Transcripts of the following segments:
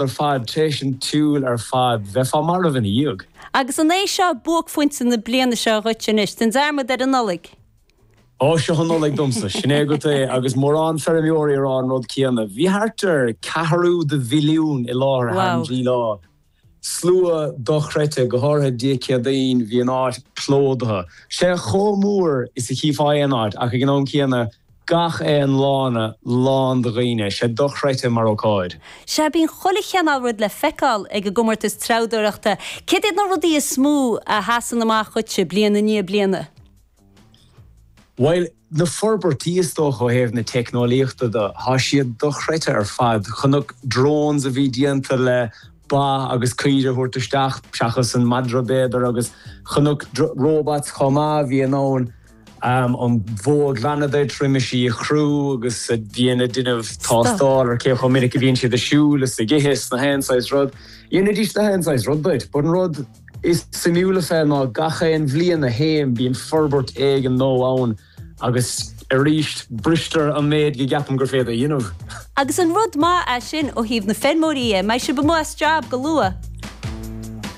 ar fad, tar éis an tsiúil ar fad, bheifeá marbh ina dhiaidh. Agus an é seo buaicphointe na bliana seo dhuit anois, déan dearmad ar an Nollaig? Ó, seo an Nollaig domsa, sin é agat é, agus mórán feirmeoirí ag rá an rud céanna. Bhí thart ar ceathrú de mhilliún i láthair thar an dtrí lá. Slua dochreidte, go háirithe Dé Céadaoin, bhí an áit plódaithe. Sé chomh mór is a chífeá aon áit, ach ag an am céanna, Gach aon lána lán de dhaoine, 'sé dochreidte mar ócáid. Sea, bíonn chuile chineál rud le feiceáil ag an gcomórtas treabhdóireachta. Céard iad na rudaí is mó a sheasann amach dhuitse, bliain i ndiaidh bliana? Bhuel, na forbairtí is dócha ó thaobh na teicneolaíochta de, tá siad dochreidte ar fad. Chonac drones a bhí déanta le ba agus caoire a thabhairt isteach, seachas an madra b'fhéidir, agus chonac robots chomh maith a bhí in ann, am an bhó a ghlanadh, a thriomú is í a chrú agus a bhíonn ag déanamh tástáil ar cé chomh minic a bhíonn siad ag siúl is ag ithe is na haon saghas rud. Dhéanfaidís na haon saghas rud duit. But an rud is suimiúla fé ná gach aon bhliain a théim bíonn forbairt éigin nua ann agus arís bristear an méid go gceapaim gur féidir a dhéanamh. Agus an rud maith é sin ó thaobh na feirmeoirí de, mbeidh sibh amuigh as job go luath.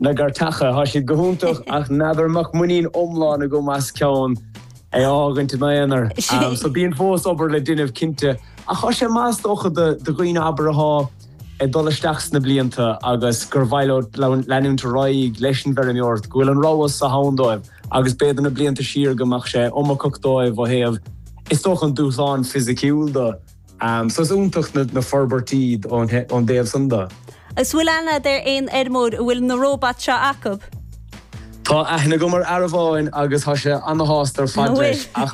na gcairteacha. Tá siad go hiontach ach n'fheadar an mbeadh muinín iomlán agam as ceann a fhágaint ina haonar. So bíonn fós obair le déanamh cinnte ach tá sé maith is dócha do dhaoine abair athá ag dul isteach sna blianta agus gur mhaith leo leanúint ar aghaidh leis an bhfeirmeoireacht go bhfuil an rogha so ann dóibh agus b'fhéidir na blianta siar go mbeadh sé iomarcach dóibh ó thaobh is dócha an dúshláin fisiciúil de. So is iontach na forbairtí ón dtaobh san de. S bhfuil aithne a'd ar aon fheirmeoir a bhfuil na róbat seo acub? Tá aithne agam ar fhear amháin agus tá sé ana-shásta ar fad leis. Ach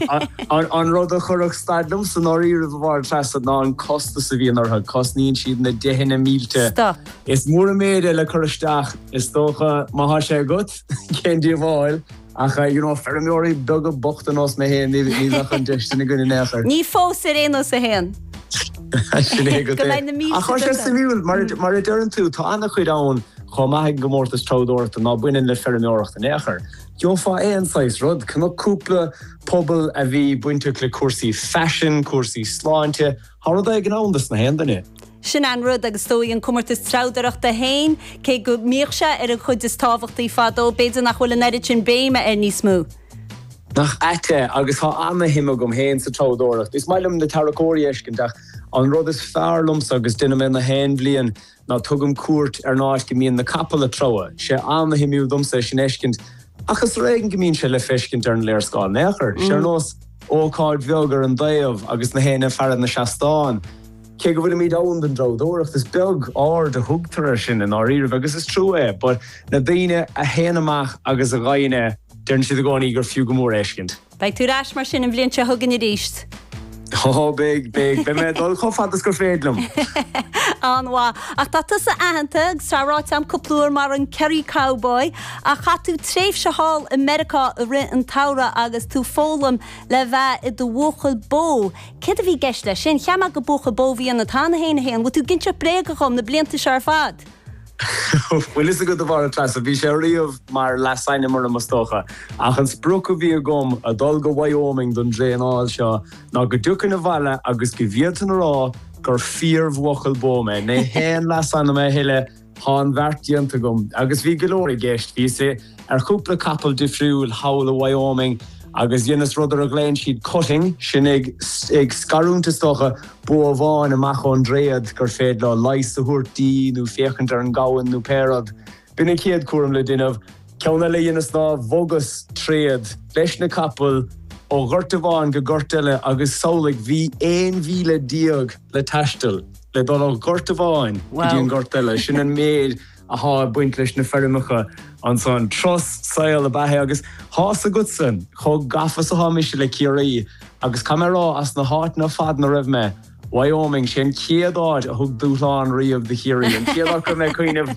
an rud a chuirfeadh stad liomsa i ndáiríribh, a Mháire Treasa, ná an costas a bhíonn orthu. Cosnaíonn siad na deicheanna mílte. Stop. Is mór an méid é le cur isteach, is dócha, má tá sé agat, cén díobháil. Ach, you know, feirmeoirí beaga bochta nós mé féin, ní bheadh an deis sin againn in aon chor. Ní fós ar aon nós a théann. Sin é agat é. Go mbeidh na mílte againn. Ach tá sé suimiúil, mar a, mar a deireann tú, tá ana-chuid ann chomh maith ag an gcomórtas treabhdóireachta ná baineann le feirmeoireacht in aon chor. Gheofá aon saghas rud, chonac cúpla puball a bhí bainteach le cúrsaí faisin, cúrsaí sláinte, Thá rud éigin ann dos na haon duine. Sin an rud, agus dóigh an comórtas treabhdóireachta féin, cé go mbíodh sé ar an chuid is tábhachtaí fadó, b'fhéidir nach bhfuil an oiread sin béime air níos mó. Nach ait é, agus thá ana-shuim agam féin sa treabhdóireacht. Is maith liom na tarracóirí a fheiscint, ach an rud is fearr liomsa, agus deinim é na haon bhliain, Ná tugaim cuairt ar an áit go mbíonn na capaill a' treabhadh. 'Sé ana-shuimiúil domsa é sin a fheiscint, ach is ar éigin go mbíonn sé le feiscint ar an léarscáil in aon chor. 'Sé ar nós ócáid bheag ar an dtaobh agus na héinne ag faire na seastán. Cé go bhfuilimid ann don dtreabhdóireacht, is beag aird a thugtar air sin i ndáiríribh, agus is trua é. But na daoine a théann amach agus a ghaibheann é, deireann siad i gcónaí gur fiú go mór é a fheiscint. Beidh tú ar ais mar sin an bhliain seo chugainn arís? Ó, beidh, beidh. Beidh mé ag dul chomh fada is gur féidir liom! An-mhaith. Ach tá tusa aitheanta, agus tá ráite agam cúpla uair, mar an Kerry Cowboy, ach chaith tú tréimhse thall i Meiriceá i rith an tsamhraidh agus tú foghlaim le bheith i do bhuachaill bó. Céard a bhí i gceist leis sin? Cheap mé gur buachaill bó a bhí ionat cheana féin, a Shéain. Bhfuil tú ag inseacht bréaga dhom na blianta seo ar fad? Bhfuil fhios agat, a Mháire Treasa, bhí sé riamh mar leasainm orm, is dócha, ach an sprioc a bhí agam ag dul go Wyoming don dtraenáil seo ná go dtiocfainn abhaile agus go bhféadfainn a rá gur fíorbhuachaill bó mé. Ní haon leasainm é a thuilleadh, tá an bheart déanta agam. Agus bhí go leor i gceist, bhíos i. ar chúpla capall difriúil thall i Wyoming agus dheineas rud ar a ghlaonn siad cutting, sin ag scarúint is dócha, bó amháin amach ón dtréad gur féidir leo leigheas a thabhairt di nó féachaint ar an ngamhain nó pé rud. B'in an chéad chúram le déanamh. Ceann eile a dheineas ná bhogas tréad leis na capaill ó ghort amháin go gort eile agus samhlaigh, bhí aon mhíle déag le taisteal le dul ó ghort amháin go dtí an gort eile, sin an méid. atá ag baint leis na feirmeacha ansan. Turas saoil ab ea é agus tá's agatsa chomh gafa is atá mise le Ciarraí agus caithfidh mé a rá as na háiteanna ar fad ina raibh mé, Wyoming, sé an chéad áit a thug dúshlán riamh do Chiarraí, an chéad áit a raibh mé ag cuimhneamh.